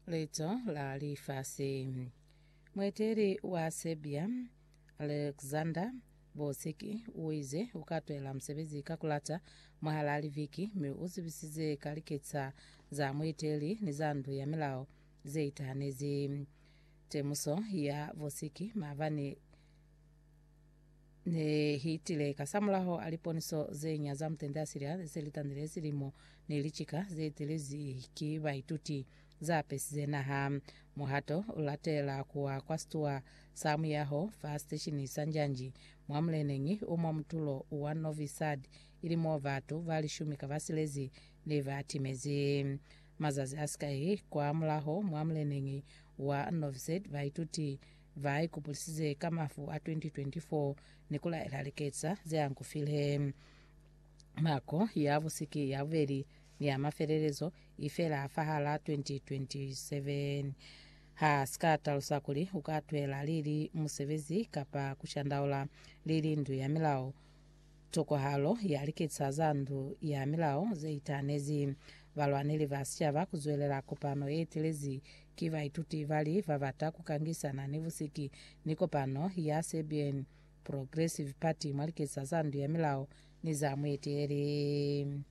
Leto la lifasi. Mueteli wa Serbia Alexander Vucic o ize u ka twela musebezi ka kulata mwahal'a liviki mi u zibisize ka liketsa za mueteli ni za ndu ya milao ze itahanezi temuso ya Vucic maabani ne hitile kasamulaho a liponiso ze nya za mutende a silya ze li tanile silimo ni licika ze telezi ki baituti za pesize naha. Muhato u latela kuwa kwa situwa sa muyaho fa siteshini sa Njanji mwa muleneñi o mwa mutulo wa Novi Sad, ili mo batu ba lishumi ka ba silezi ne ba timezi. Mazazi a sikai kwa mulaho mwa muleneñi wa Novi Sad, baituti Ba ikupulisize ka mafu a 2024 ni ku laela liketsa ze angufile. Nako ya busiki ya bubeli ni ya mafelelezo i fela fahal'a 2027. Ha si ka talusa kuli u ka twela lili musebezi kapa ku shandaula lili ndu ya milao Tokwahalo ya liketsa za ndu ya milao ze itahanezi balwaneli ba sicaba ku zwelela kopano ye telezi ki baituti ba li ba bata ku kangisana ni busiki ni kopano ya Serbian Progressive Party mwa liketsa za ndu ya milao ni za mueteleli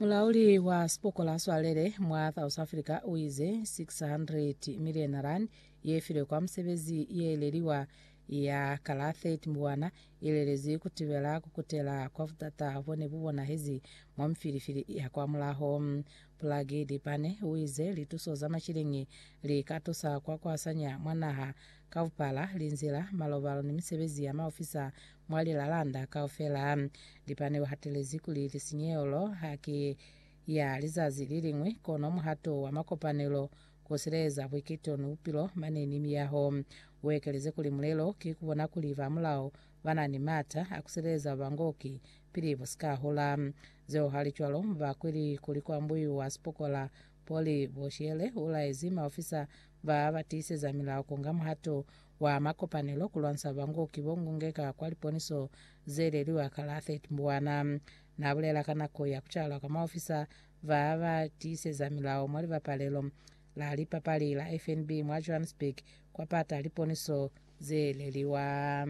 Mulauli wa sipokola swalele mwa South Africa uize 600 million rand ye filwe kwa musebezi ye leliwa ya ka la 30 Mbwana ilelezwi kutibela kukutela kwa butata bo ne bu bonahezi mwa mifilifili ya kwa mulaho. Plagi Dipane uize lituso za mashilingi li ka tusa kwa kuasanya mwa naha kaupala, linzila, malobalo ni misebezi ya maofisa mwa lilalanda kaufela. Dipane uhatelezi kuli lisinyehelo haki ya lizazi liliñwi, kono muhato wa makopanelo Ku sileza buiketo ni bupilo mane ni miyaho. U ekeleze kuli, Mulelo ki ku bona kuli ba mulao ba na ni m'ata a ku sileza ba bangoki pili bu si ka hola. Zeo halicwalo mu ba kweli kuli ku ambuiwa sipokola. Poli Boshele u laezi maofisa ba ba tiiseza milao ku nga muhato wa makopanelo ku lwanisa bangoki bo ngungeka kwa liponiso ze leliwa ka la 30 Mbwana. Na bulela ka nako ya ku calwa ka maofisa Ba ba tiiseza milao mwa libapalelo la lipapali la FNB mwa Johannesburg kwa pata liponiso ze leliwa.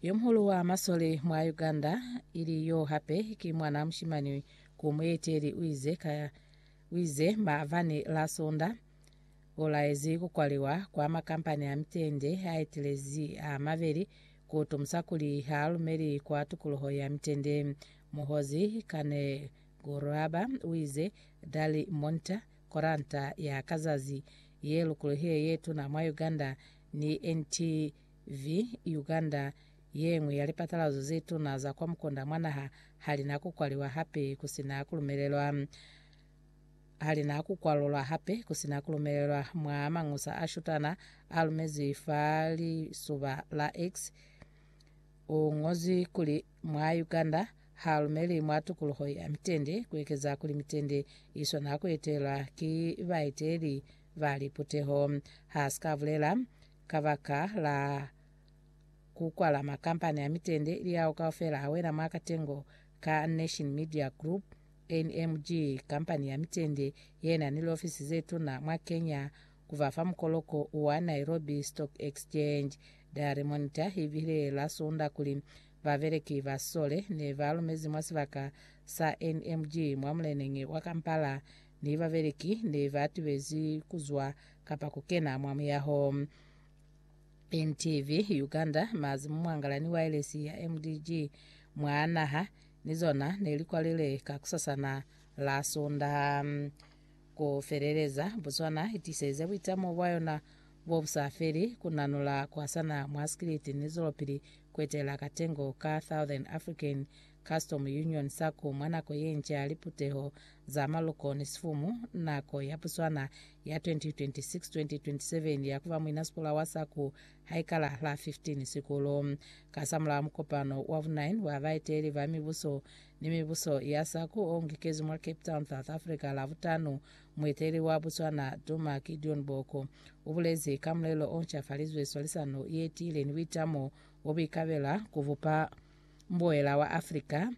Yomuhulu wa masole mwa Uganda, ili yo hape ki mwana mushimani ku mueteli, uize ka uize maabani la Sonda ulaezi kukwaliwa kwa makampani a mitende aetelezi a mabeli, kutomusa kuli haalumeli kwa tukuluho ya mitende. Muhozi Kane Guraba uize, Dali Monta, koranta ya kazazi ye lukulohile ye tuna mwa Uganda, ni NTV Uganda, yeñwi ya lipatalazo ze tuna za kwa mukunda mwa naha, halina kukwaliwa hape kusina kulumelelwa halina kukwalulwa hape kusina kulumelelwa mwa mañusa a shutana a lumezwi fa lisuba la X. U ngozwi kuli Mwa Uganda, ha lumeli mwa tukuluho ya mitende, ku ekeza kuli mitende i swana ku etelwa ki baeteli ba liputeho. Ha si ka bulela kabaka la ku kwala makampani a mitende, Liao kaufela a wela mwa katengo ka Nation Media Group, NMG, kampani ya mitende ye na ni liofisi ze tuna mwa Kenya, ku ba fa mukoloko wa Nairobi Stock Exchange. Daily Monitor i bile la Sunda kuli, Babeleki ba sole ne ba lumezi mwa sibaka sa NMG mwa muleneñi wa Kampala ni babeleki ne ba tibezi ku zwa kapa ku kena mwa muyaho. NTV Uganda, Mazi mu mwangala ni waelesi ya MDG mwa naha ni zona ne li kwalile kakusasana la Sunda. Ku feleleza, Botswana i tiselize buitamo bwa yona bo bu sa feli, ku nanula, ku hasana mwa sikiliti ni zwelopili ku etelela katengo ka Southern African Custom Union, SACU, mwa nako ye nca ya liputeho za maloko ni sifumu, nako ya Botswana ya 2026-2027 ya ku ba muinasikola wa SACU ha i kala la 15 Sikulu. Kasamulaho mukopano wa bu 9 wa baeteleli ba mibuso ni mibuso ya sa ku ongikezwi mwa Cape Town, South Africa, Lavutanu, mueteli wa Botswana Duma Gideon Boko u bulezi ka mulelo o ncafalizwe swalisano ye tiile ni buitamo bo buikabela ku bupa mbuela wa Africa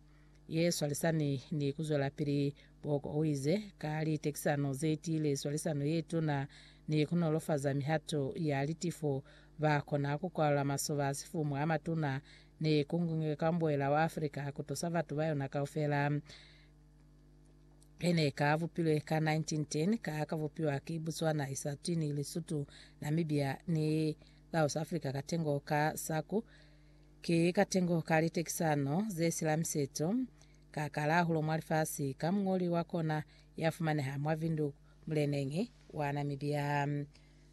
ye swalisani ni ku zwelapili. Boko u ize, Ka litekisano ze tiile, swalisano ye tuna, ni ku nolofaza mihato ya litifo, ba kona ku kwalula masoba a sifumu a matuna ni ku nge ka mbuela wa Africa ha ku tusa batu ba yona kaufela be ne ka bupilwe ka 1910 ka ka bupiwa ki Botswana, Eswatini, Lesotho, Namibia ni Laos Africa katengo ka saku ki katengo ka litekisano ze sila miseto ka kalahulo mwa lifasi ka mungoli wa kona ya fumaneha mwa Vindu muleneñi wa Namibia.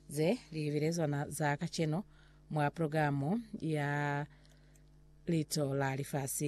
Ze li bile zona za kaceno. mwa programo ya Lito la Lifasi.